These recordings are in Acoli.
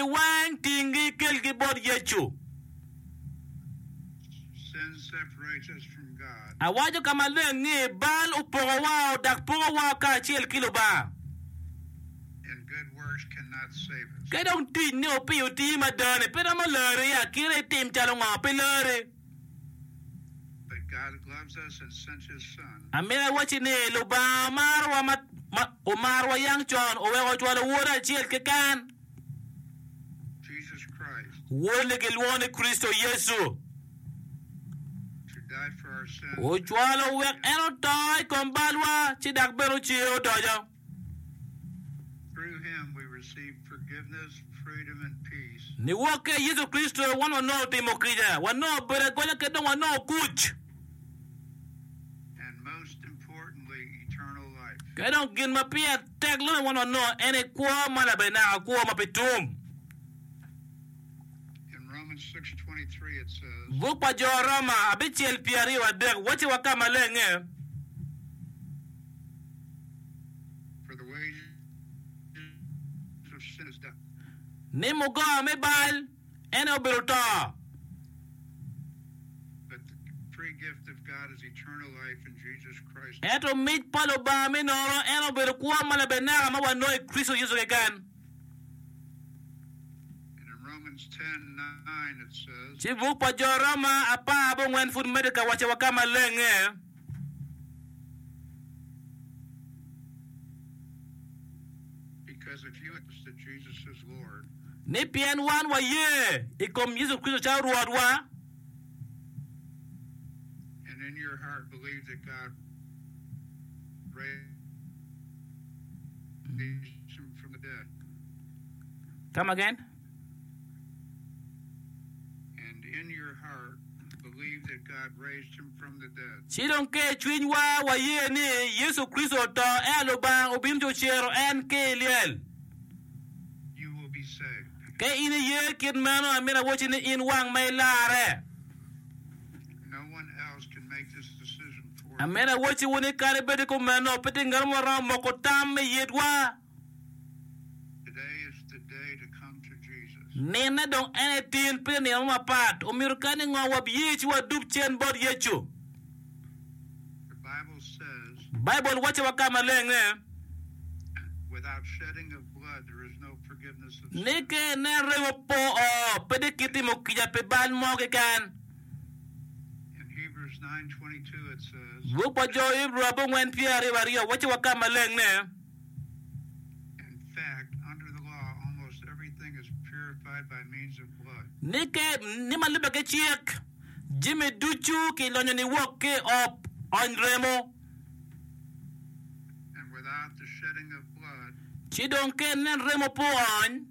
I wang tingi ikelgi bot Yecu. Awaco ka maleng ni, Bal opoko wa o dok poko wa o kacel ki Lubanga. Ke dong tic ni opiyo tii madani pe romo lari, akira itim calo ngo pi lari? Amito awacci ni Lubanga omarowa ma omarowa yang con oweko ocwalo Wode acel keken, Wode-ni gilwongo ni Kricito Yecu. Ocwalo wek en oto i kom balwa ci dok bene ocer odoco. Niwokke i Yecu Kricito, wan wanongo timo kica, wanongo bedo agonya kadi dong wanongo kuc. Kadi dong gin ma pire tek loyo wan wanongo en aye kwo ma labenaka, kwo ma pe tum. Buk pa Jo Roma abicel pyeraryo adek wacciwa ka malenge. ni mugoa me bal ene obedo to. Ento mic pa Lubanga me nono ene obedo kwo ma labeneka ma wanongo i Kricito Yecu keken. Ci buk pa Jo Roma apar abongwen pud medde ka wacciwa ka maleng-nge, Ni pien wan waye i kom Yecu Kricito calo Rwotwa, come again. Ci dong ker i cwinywa waye ni Yecu Kricito oto ento Lubanga obino ci ocero en ki i lyel. Ka in iye kit meno, amito awocci ni in wang ma ilarre. Amito awocciwu ni kadi bed kumeno, pe tye ngat mo ma romo moko tam me yitwa. Nine dong en etin pi nino mo mapat. Omyero kadi ni ngo wabiye ci wadub cen bot Yecu. Baibul wacci wa ka maleng ni, ni ka inen remo po o, pe di kitimo kica pi bal mo keken. Buk pa Jo Ibru abongwen pyeraryo aryo wacci wa ka maleng ni, Ni ma lubbe ki cik, jami ducu kilonyo ni wok ki i ob ony remo, ci dong ka en nen remo pe oony.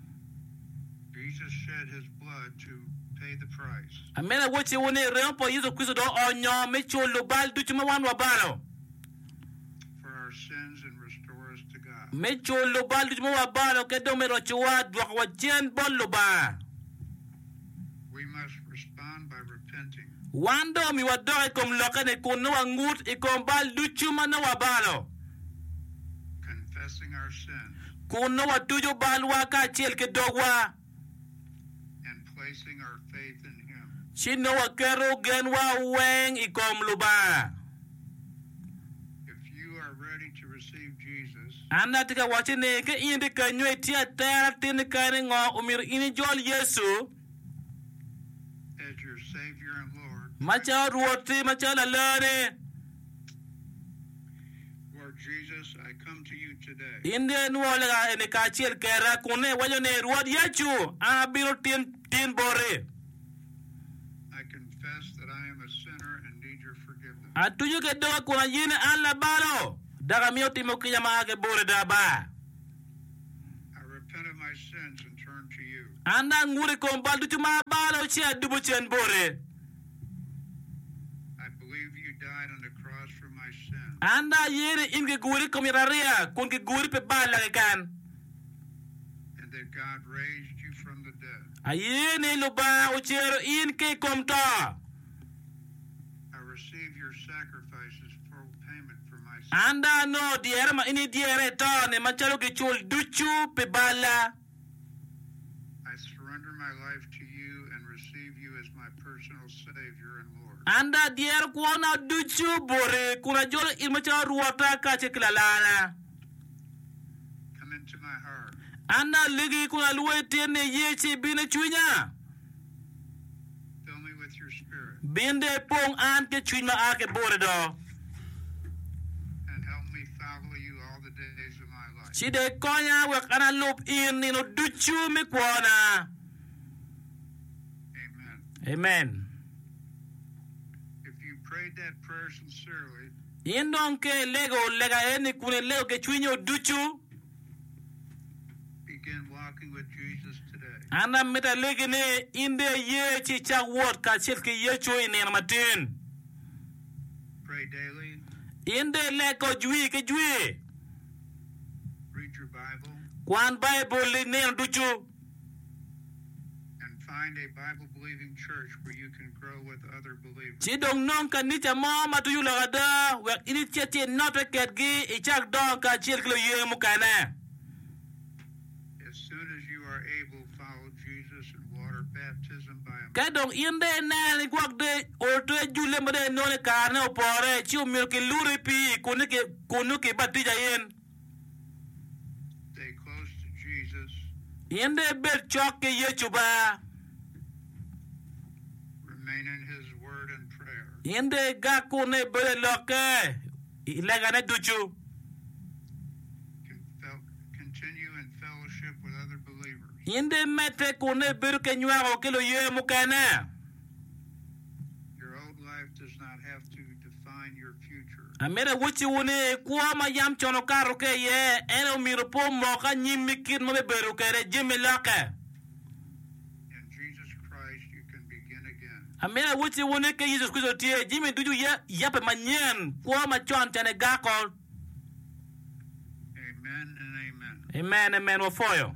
Amene awoco iwu ni remo pa Yecu Kricito dong oonyo me culo bal ducu ma wan wabalo, me culo bal ducu ma wabalo kadi dong me rocowa dwokowa cen bot Lubanga. Wan dong omiwa dok i kom lokke-ni kun nongo wangut i kom bal ducu ma nongo wabalo, kun nongo watuco balwa kacel ki dogwa, ci nongo waketo genwa weng i kom Lubanga. An atye ka wacci ni ka in tye kany nyo itye atera atir ni kare ni ngo omyero in ijol Yecu macalo Rwoti macalo Laloni. In dong inwongo lega eni kacel keda kun iwaco ni Rwot Yecu an abino tin tin boti. Atuco ki doga kun ayene an labalo, dok amiyo timo kica ma a ki boti da ba. An dong angut i kom bal ducu ma abalo ci adubo cen boti. An dong aye ni in kiguri i kom yat ariya kun kiguri pi balla keken. Aye ni Lubanga ocero in ki i kom to. An dong anongo dyere ma in idyere i toni macalo gicul ducu pi balla. An dong adyero kwona ducu boti kun ajolo in macalo Rwotta kacel ki Lalarna. An alegi kun alwor i tyen ni iyee ci ibin i cwinya. Bin dong ipong an ki cwiny ma a ki boti do, ci dong ikonya wek an alub in nino ducu me kwona. Amen. In dong ka ilego lega eni kun ilego ki cwinyo ducu, an amito alegi ni in dong iye ci icak wot kacel ki Yecu i nino matin. In dong ileg kong jwi ki jwi. Kwan Baibul-li nino ducu. Ci dong nong kanica mo ma twinyo lok ada wek in icit ci inote kedgi, icak dongo kacel ki luye mukene. Ka dong in dong ineno ni gwok dong otwe julle ma dong inongo ni karene opore, ci omyero kiluri i pii kunnu kibatija in. In dong ibed cok ki Yecu ba. In dong igak kunnu i bedo i Lokke i legane ducu. In dong imedde kunnu i bedo ki nywako ki luye mukene. Amito awocciwu ni, kwo ma yam con okato ki iye, en aye omyero pe omok anyim me kit ma bibedo kwede jami lokke. Amito awocciwu ni, ka i Yecu Kricito tye, jami ducu yabbe manyen, kwo macon cene gako. Amen, amen, wapwoyo.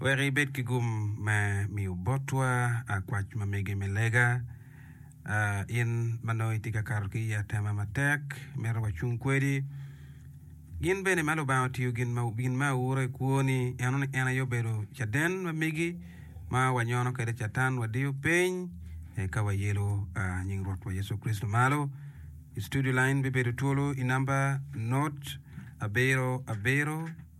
Wek ibed ki gum me miyo botwa akwac ma mege me lega. In ma nongo itye ka kato ki i atema matek, mito wacung kwedi. Gin bene ma Lubanga otiyo gin ma, gin ma aura i kwoni, eno ni en aye obedo caden ma megi ma wanyono kwede Catan, wadiyo piny, eka wayelo nying Rwotwa Yecu Kricito malo. I studio line bibedo twolo i namba not abiro abiro.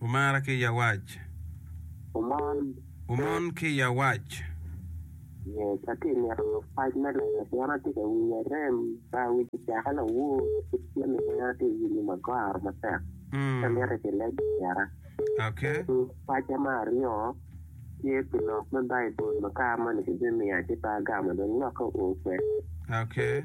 Wumara ki yawac. Wumon. Wumon ki yawac. Yes, atye mito pac me lega pien atye ka winyo rem ma awic ocaka lawur kit jami ma en atye winyo ma goro matek ci amito ki lego kwera. Okay. Paca me aryo tye pi lok me Baibul ma kare moni ki bimiya ci pe agamo dong lokke oo kwede. Okay.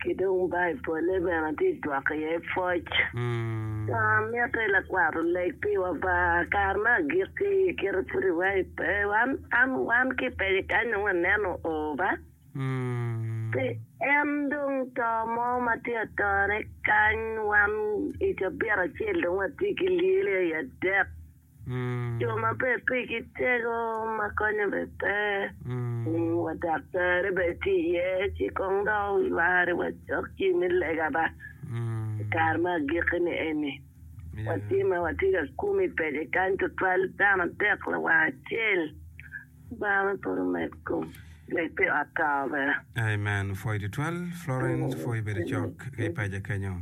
Ki dong Baibole bene tye jwak iye pwoc. Wan mitte lakwat oleg piwa ba kare me agikki kite pud iwayo pe. Wan an wan ki pece kany dong waneno o ba. Pi en dong to mo ma tye atone kany wan i cabit acel dong watye ki lyele aye adek. Jo maber pe ki tego ma konyo be pe, wa daktari be ti iye ci kong dok wi mari wa cok ci me lega ba i kare me agiki ni eni. Wa ti ma wa ti ka kumi pede kany tutwal dano adek lawang acel. Bang'e pud omed kom leb pi ot tawa bene. Amen pwoy tutwal Florence pwoy bedo cok ki i paja kenyo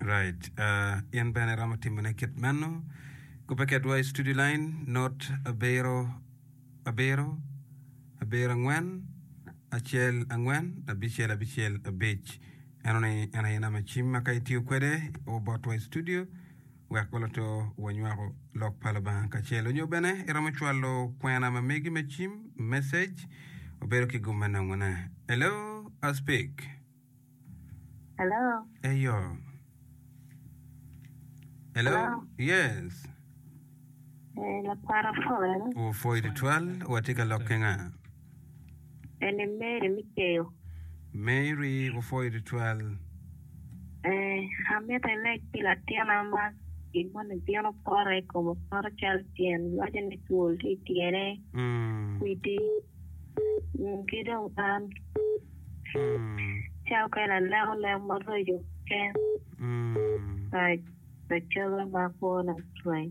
right uh in bene iromo timo ne kit meno kubbe kedwa i studio line not abiro abiro abiro angwen acel angwen abicel abicel abic eno ni en aye nama cim ma ka itiyo kwede obotwa i studio wek waloto wanywako Lok pa Lubanga kacel. Nyo bene iromo cwalo kwena ma megi me cim, message, obedo ki gum me nongone. Hello, I speak. Hello. Eyo. Hello. Hello. Yes. Eh, lakwara Paul. Opwoyo tutwal, watye ka lok ki nga? Eni Mary me Keyo. Mary opwoyo tutwal. Ee, amito ileg pi latina ma gin moni bino poto i kome poto calo tyen lwacone twol tye i tyene, kwidi, ki dong an calo kene aleko lek maraco keken pa coga ma kwona cwiny.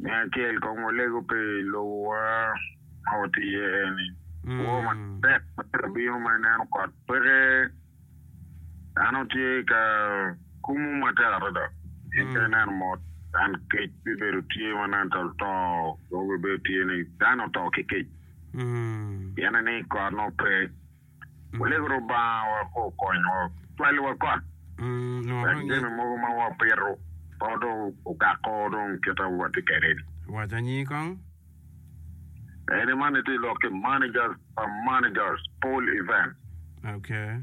Me acel kong walego pi lobowa ma watye iye eni. Kwo matek ma tye ka bino ma ineno kot peke, dano tye ka kumo matek adada. Pien ka ineno mot, dan kec bibedo tye ma nen calo to, dong bibedo tye ni dano oto ki kec. Pienni ni kot nongo pe. Walek Lubanga wa pe okony wa, twal wa kot. Wek jami mogo ma wapito pe odong ogako dong kit ma watye kwede ni. Wac anyi kong. Eni man itye lok ki managers pa managers, Paul Evans. Okay.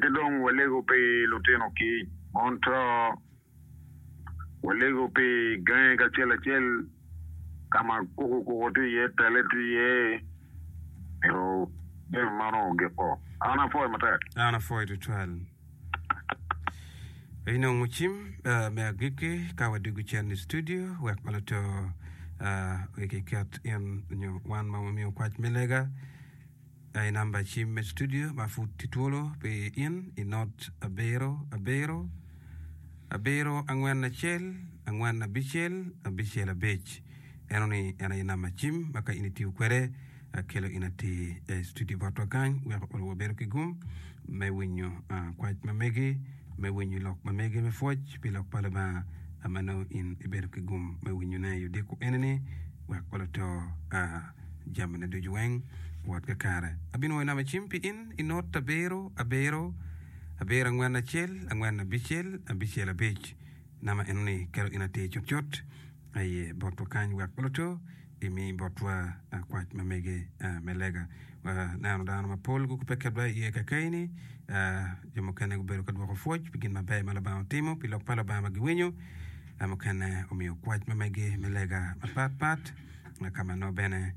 Ki dong walego pi lutino kic, Montreal Walego pi gange kacel acel ka ma kuku kuku tye iye, tele tye iye, ento jami man onongo giko. An apwoyo matek. An apwoyo tutwal. Inongo cim uh, me agikki ka wadwogo cen i studio wek ma luto uh, okiket in nyo wan ma wamiyo kwac me lega. Aye number cim me studio ma pud tye twolo pi in i not abiro abiro abiro angwen acel angwen abicel abicel abic eno ni en aye number cim ma ka in i tiyo kwede akelo in atir i studio bot wa kany wek onongo wa bedo ki gum me winyo kwac ma megi me winyo lok ma megi me pwoc pi lok pa Lubanga ma nongo in i bedo ki gum me winyo ne i odiko eni ni wek wa luto jamine ducu weng wot kakare. Abinwoyo nama cim pi in i not abiro, abiro, abiro angwen acel, angwen abicel, abicel abic. Nama enoni kelo in atir cutcut aye bot wakany wek luto imi botwa kwac ma mege me lega. Waneno dano mapol gukube kedwa iye kakayini, jo mukene gubedo ka dwoko pwoc pi gin maber ma Lubanga otimo pi lok pa Lubanga ma giwinyo, mukene omiyo kwac ma mege me lega mapat pat. Ma ka ma nongo bene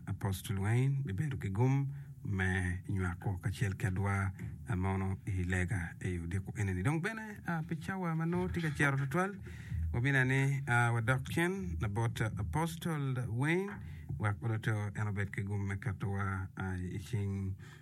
Apostle Wayne bibedo ki gum me nywako kacel kedwa mono i lega i odiko enini. Dong bene pi cawa ma nongo tye ka cito tutwal, wabine ni wadok cen labot Apostle Wayne wek onongo en obed ki gum me ketowa i cing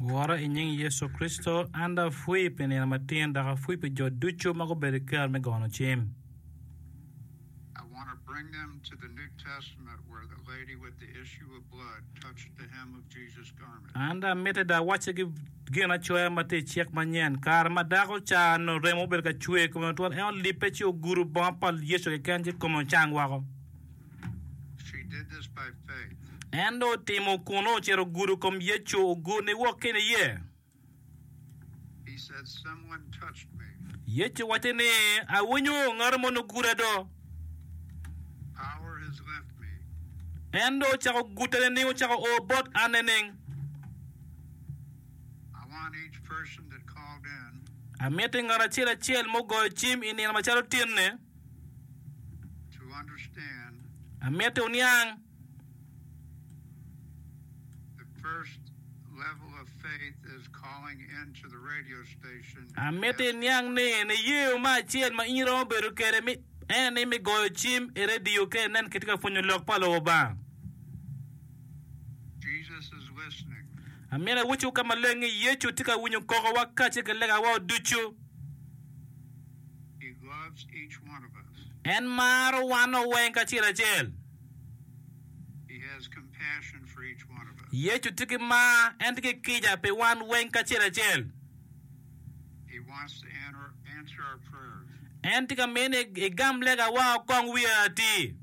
Wora i nying Yecu Kricito, an dong apwii pi nino matin dok apwii pi jo ducu ma gubedo ki kero me gono cim. An dong mitte dong awaccigi ginacoya ma tye i Cik Manyen, Kare ma dako ca nongo remo obedo ka cwer i kome matwal, en olibbe ci ogudo bongo pa Yecu keken ci kome ocang woko. En dong otimo kun ocito ogudo kom Yecu, ogur niwok ki niye. Yecu owacce ni, Awinyo ngat moni oguda do. En dong ocako gute nining? Ocako o bot an nining? Amiti ngat acel acel mugoyo cim i nino macalo tinni. Amiti wuniang Amiti iniang ni niye ma acel ma in iromo bedo kwede en ni me goyo cim i radio ka inen kitye ka pwonyo lok pa Lubanga. Amini awucu ka maleng ni Yecu tye ka winyo kokowa kacel ki legawa ducu. En maro wanwa weng kacel acel. Yecu tye ki mar, en tye ki kica pi wan weng kacel acel. En tye ka miyo ni igam legawa okong wi ati.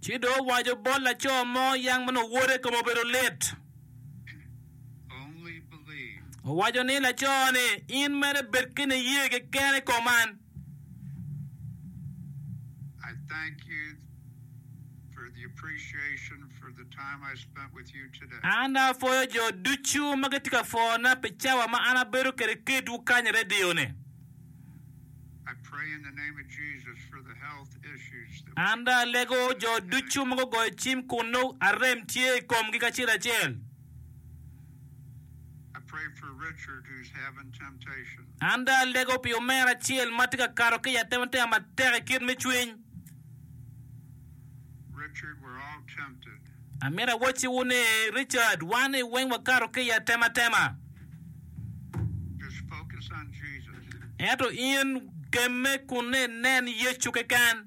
Ci dong owaco bot laco mo yang ma nongo wode kome obedo lit. Owaco ni laco ni, In mere bed ki niye keken i kom an. An apwoyo jo ducu ma gitye ka pwona pi cawa ma an abedo kwede ki itwu kany i redio ni. An dong alego jo ducu ma gugoyo cim kun nongo arem tye i komgi kacel acel. An dong alego pi omera acel ma tye ka kato ki i atematema matek i kit me cwiny. Amito awacciwu ni, Richard, wani weng wakato ki i atematema. Ento in, gemme kun inen Yecu keken.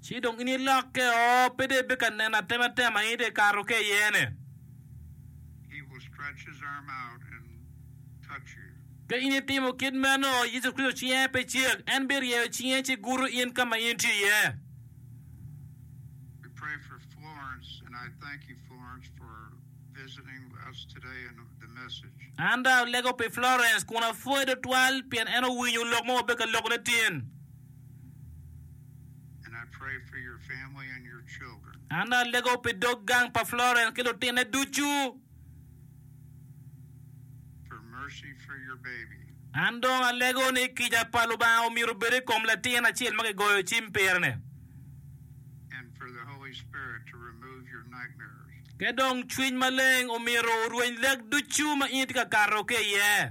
Ci dong in ilokke o, pe dong ibe ka neno atematema in dong ikato ki iyene. Ka in itimo kit meno, Yecu Kricito cinge pe cek, en biryeyo cinge ci gudo in ka ma in tye iye. An dong alego pi Florence kun apwoye tutwal pien en owinyo lok ma wabedo ka lokone tin. An alego pi dog gang pa Florence ki lutine ducu. An dong alego ni kica pa Lubanga omyero obed i kom latin acel ma kigoyo cim pire-ni. Ki dong Cwiny Maleng omyero orweny lek ducu ma in itye ka kato ki iye.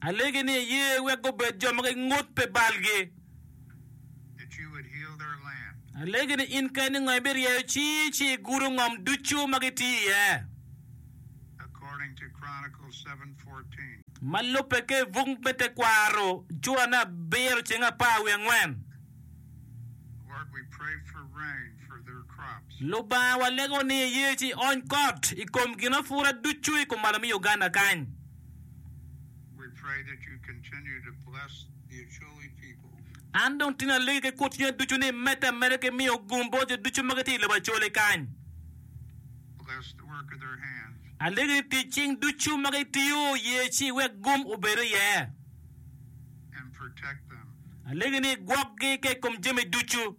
Alegi ni iye wek gubed jo ma gingut pi balgi. Alegi ni in keni ngo ibiryeyo cingi ci igudo ngom ducu ma gitye iye. Ma lubbe ki i buk me tekwaro cura me abiro ceng apar wiye angwen. Lubanga walego ni iye ci iony kot i kom ginapura ducu i kumalo me Uganda kany. An dong tin alegi ki kut cwinya ducu ni medde ameda ki miyo gum bot jo ducu ma gitye i lobo Acholi kany. Alegi ni tic cing ducu ma gitiyo ye ci iwek gum obed iye. Alegi ni igwokgi ka i kom jami ducu.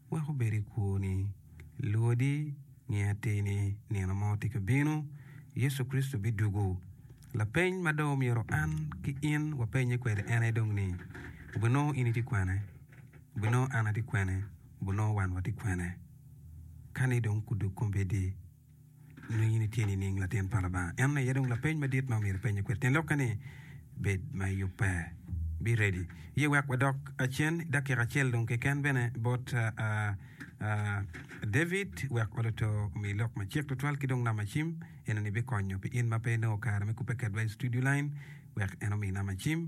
Wek wubed i kwo ni luodi nge atir ni nino mo tye ka bino, Yecu Kricito bidwogo. Lapeny ma dong myero an ki in wapenye kwede en aye dong ni, Wubinongo in itye kwene? Wubinongo an atye kwene? Wubinongo wan watye kwene? Ka ni dong kudug kombeddi, Nongo in itye nining, latin pa Lubanga? Eno aye dong lapeny madit ma omyero ipenye kwede. Tyen lokke ni, Bed ma iyubbe. Be ready. Ye wek wadok cen i dakika acel dong keken bene bot David wek oluto omi lok macek tutwal ki dong namacim. Enoni bikonyo pi in ma pe inongo kare me kubbe kedwa i studio line wek en omi namacim.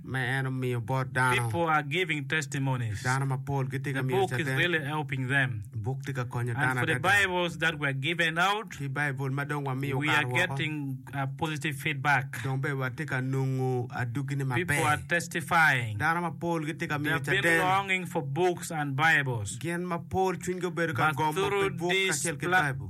ma en omiyo bot dano. Dano mapol gitye ka miyo caden. Buk tye ka konyo dano adada. Ki Baibul ma dong wamiyo okato woko, dong bene watye ka nongo adwoggine maber. Dano mapol gitye ka miyo caden. Gin mapol cwinygi obedo ka gomo pi buk kacel ki Baibul.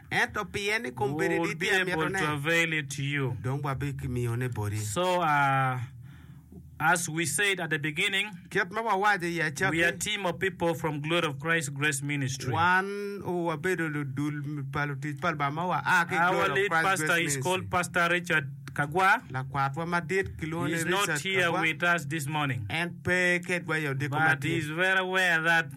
Ento pien i kom bedo i dit pi amitone, dong wabikimiyone boti. Kit ma wawaco i acakki, wan wabedo ludul pa lutic pa Lubanga ma waa ki i Glory of Christ Grace Ministry. Lakwatwa madit kilwongo ni Richard Kagwa, en pe kedwa i odiko ma tye.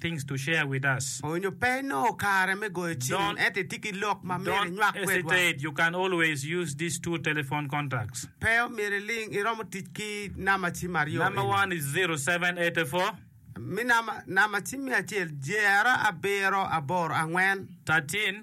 things to share with us. Onyo pe inongo kare me goyo cim, Don't ento itye ki lok ma myero don't inywak kwedwa. hesitate. You can always use these two telephone contacts. Pe omyero iling, iromo tic ki namba cim aryo Number eni. one is 0784 Mi namba, namba cim me acel, Jer abiro aboro angwen. 13.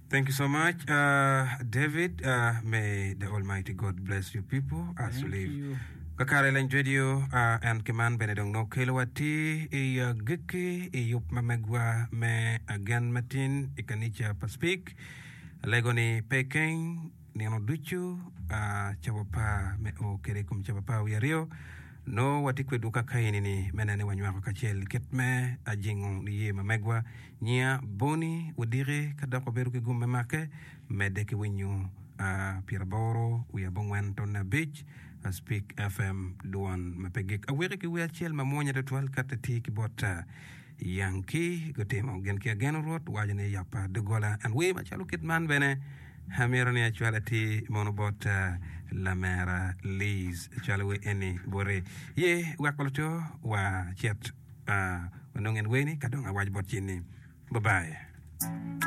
Thank you so much David may the almighty God bless you people as you live kakare leng radio and ki man bene dong nongo kelo wa ti i gikki i yub ma megwa me agen matin i kanica pa speak alego ni pe keng Nino ducu cawa par me o kede i kom cawa par wiye aryo, nongo watye kwedwu ka ka eni-ni me neno ni wanywako kacel kit me ajingo niye ma megwa, nyiya, boni, wadiki ka dok wabedo ki gum me make medde ki winyo pyeraboro wiye abongwen tonne abic Speak FM dwan ma pe gik. Aweki ki wer acel mamwonya tutwal kato iti ki bot Yankee gutimo gin ki ageno Rwot waco ni yapa dogola and wer macalo kit man bene Amito ni acwal atir mono bot lamera Liz cwalo wer eni bote ye weko luco wa cet wanong en wer ni kadong awaco bot cin ni bye bye.